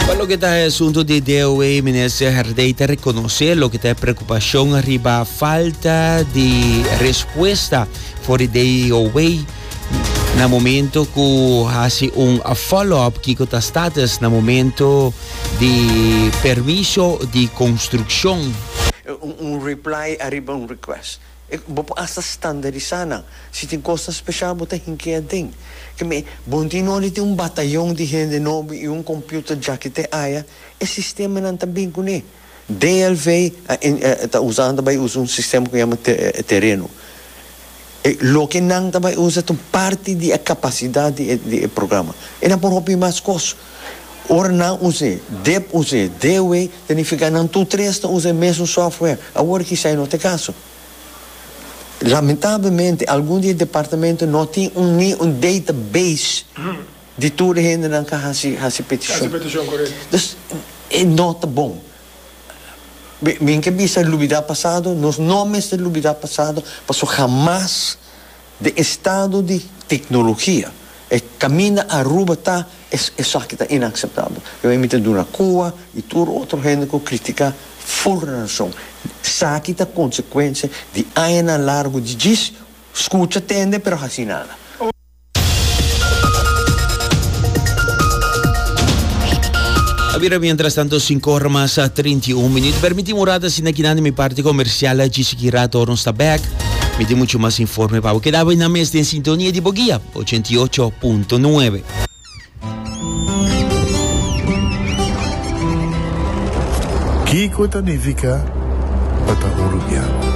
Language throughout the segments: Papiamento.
Pa loke ta e asunto di DOW, minister Herdey ta rekonosé loke ta e preokupashon riba falta di respuesta for di DOW na momento ku hasi un follow-up kiko ta status na momento di permiso di konstrukshon. Un reply ariba un request. Bo por asta standarisá nan. Si tin kosnan speshal bo ta hinkea den. Ke me, bo no tin nodi tin un batayon di hende nobo i un komputer djaki te aya, e sistemanan ta bin kuné. DLV a ta usa nan ta bai usa un sistema ku yama tereno. E loke nan ta bai usa ta un parti di e kapasidat di e programa. E nan por hopi mas kos. Ora nan us'é, dep us'é, dewey ta nifiká nan tur tres ta usa e mesun software. Awor kisá e no ta e kaso. Lamentablemente algun di e departamento no tin un ni un database di tur e hendenan ku a hasi hasi petishon. Dus e no ta bon. Min ke bisa lubidá pasado, nos no mester lubidá pasado pasobra hamas. De estado di tecnologia e caminda Aruba ta e esaki ta inaceptabel. Yo e mi ta duna cua y tur otro hende cu critica full razon. Esaki ta consecuencia di añanan largo di djis scucha tende pero haci nada. A bira mientras tanto sinku ora mas trinta i un minuut. Permiti un rata asina kinan di mi parti comercial djis aki rato ora nos ta back. Mi tin mucho mas informe pa bo. Keda buena mes den sintonia di bo guia 88.9. Kiko ta nifica pa ta un rubian?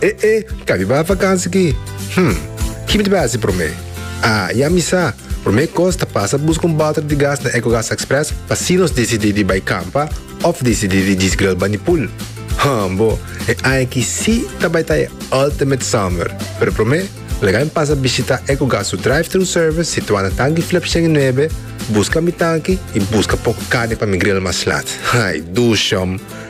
E e, kariba vakansi ki? Hm, ki mi ta bai hasi promé? Ah, ya mi sa! Promé kos ta pasa buska un balter di gas na Ecogas Express pa si nos disidí di bai kampa òf disidí di djis gril bani pool. Hm, bo, e aña aki sí ta bai ta e ultimate summer! Pero promé, laga mi pasa bishitá Ecogas su drive-thru service situá na Tanki Flip shen i nuebe, buska mi tanki i buska poko karni pa mi gril maslat. Ay, duushum!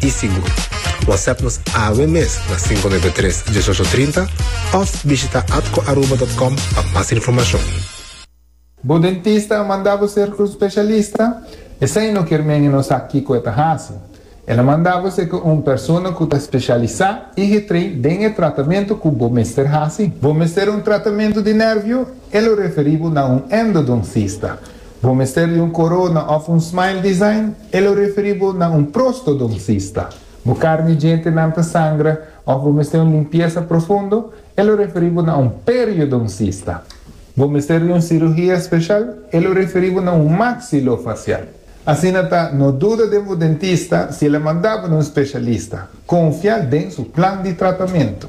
i sigur. Whatsapp nos awe mes na sinco nueve tres, dieciocho trinta of bishita atcoaruba.com pa mas informacion. Bo dentista a manda bo ser un specialista? Esei no kier men e no sa kico e ta haci. El a manda bo ser cu un persona cu ta specialisa i getrei den e tratamento cu bo mester haci. Bo mester un tratamento di nervio? E lo referi bo na un endodoncista. Bo mester di un corona of un smile design? E lo referi bo na un prostodoncista. Bo carni djentenan ta sangra of bo mester un limpiesa profundo? E lo referi bo na un periodoncista. Bo mester di un cirugia special? E lo referi bo na un maxilofacial. Asina ta, no duda den bo dentista si el a manda bo na un specialista. Confia den su plan di tratamento.